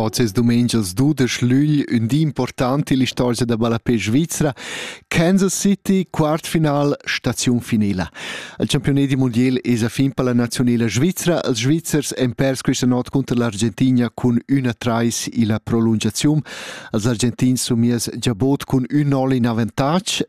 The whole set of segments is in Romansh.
Oz es dumengias dudesch lügl, ün di important ill'istorgia da ballapè svizra. Kansas City, quartfinal, staziun finila. Il campiunadi mundial es a fin per la nazionela svizra. Els Svizzers han pers questa not cunter l'Argentina cun 1-3 illa prolungaziun. Els Argentins sun mies giabot cun ün 0 in avantatg.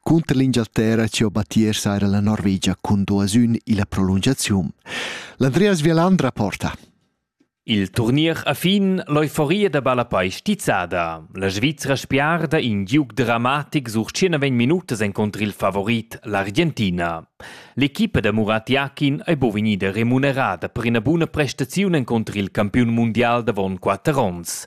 Cunter l'Engialterra ci ho battier saira la Norvegia cun duas ün illa prolungaziun. L'Andreas Vialandra porta. Il turnier a fin, l'euforia da ballapei stizzada. La Svizra spiarda in giug dramatic sur 19 minutas encontr il favorit, l'Argentina. L'equipa da Murat Jakin è bo vegnida remunerada per ina buna prestaziun encontr il campiun mundial davon quatter onns.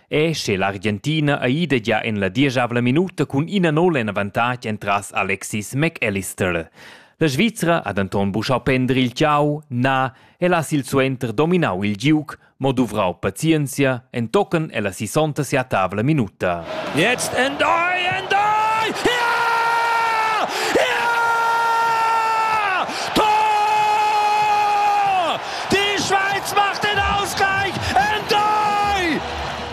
E sche l'Argentina ei ida gia en la dieschavla minuta cun ina nol en avantatg entras Alexis McAllister. La Svizra ha denton buschau pender il tgau, na, el ha silsuenter dominau il giug, mo duvrau pazienzia entochen ella sisonta sia tavla minuta. Jetzt endoi, endoi! Ja! Ja! Tor! Die Schweiz macht den Ausgleich en dai!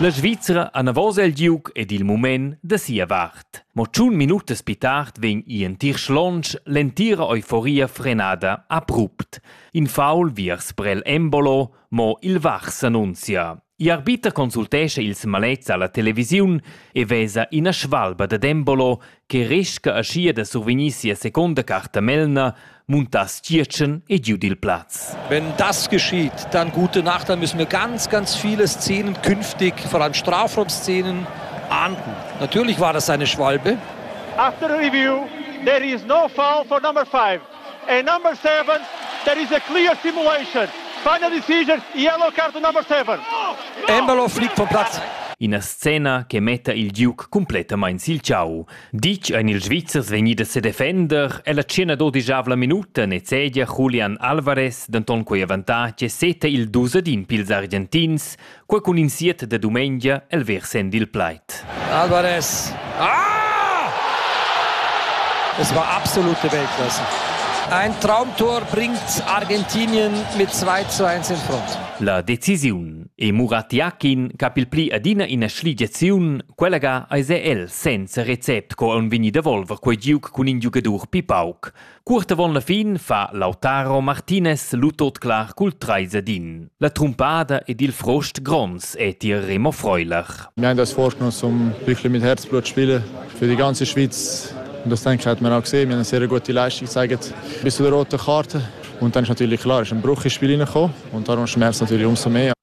La Svizra anavos el giug ed il mument da sia vart. Mo tschun minutas pi tard vegn Ian Tirschlonsch l'entira euforia frenada abrupt. In faul viers Brel Embolo, mo il Vach s'annunzia. I'arbiter consultescha ils malets alla televisiun e vesa ina svalba dad Embolo che resca aschia da survegnir sia seconda carta Melna, muntass Tgietschen e giu dil plaz. Wenn das geschieht, dann gute Nacht, dann müssen wir ganz, ganz viele Szenen künftig, vor allem Strafraumszenen, ahnden. Natürlich war das eine Schwalbe. After review, there is no foul for number five. And number seven, there is a clear simulation. Final decision, yellow card number seven. Embalo flick vom Platz. Ina scena che metta il Duke completamain sil tgau. Ditg ein ils Svizzers vegnidas sedefender e la tschena dodigiavla minuta nezegia Julian Alvarez denton quei avantatg e seta il dus ad in pils Argentins, Quei cun in siet de dumengia el versend il plaid. Alvarez! Ah! Es war absolute Weltklasse. Ein Traumtor bringt Argentinien mit 2 zu 1 in Front. La decisiun e Muratiakin cap il pli adina ina schligiaziun, quella ga eis el senza recept co on vegni da volver quei giug cun in giugadur pi pauc. Cuort avon la fin fa Lautaro Martinez lu tot clar cul trais ed in. La trumpada ed il frost gronds è tier Remo Freuler. Nein, das forscht uns um wirklich mit Herzblut spielen für die ganze Schweiz. Und das denke ich, hat man auch gesehen. Wir haben eine sehr gute Leistung gezeigt. Ein bisschen rote Karte. Und dann ist natürlich klar, es ist ein Bruch ins Spiel hineingekommen. Und darum schmerzt es natürlich umso mehr.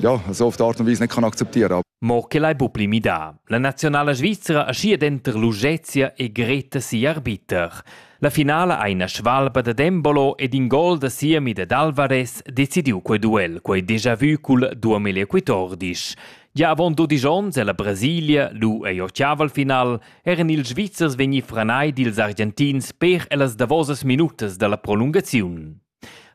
ja, so auf die Art und Weise nicht kann akzeptieren kann. Mo che l'hai bu pli midà. La nazionala svizra ascia denter Lugezia e Greta si arbiter. La finala ha ina svalba da Dembolo ed in gol da Siemi ed Alvarez decidiu quei duel, quei déjà vu col 2014. Gia avon 12 onns ella Brasilia, lu ei ochiava al final, eran ils Svizzers vegni franai dils Argentins per ellas davosas minutas dalla prolungaziun.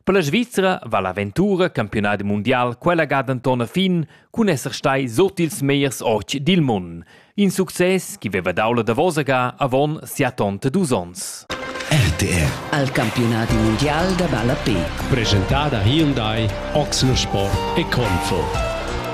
Per la Svizra va l'aventura campiunadi mundial quella ga denton a fin cun esser stai sut ils meiers otg dil mund. In success che veva dau la davosa ga avon siatonta dus onns. RTR. Al campionati mondial da ballapé. Presentada Hyundai, Oxensport e Confo.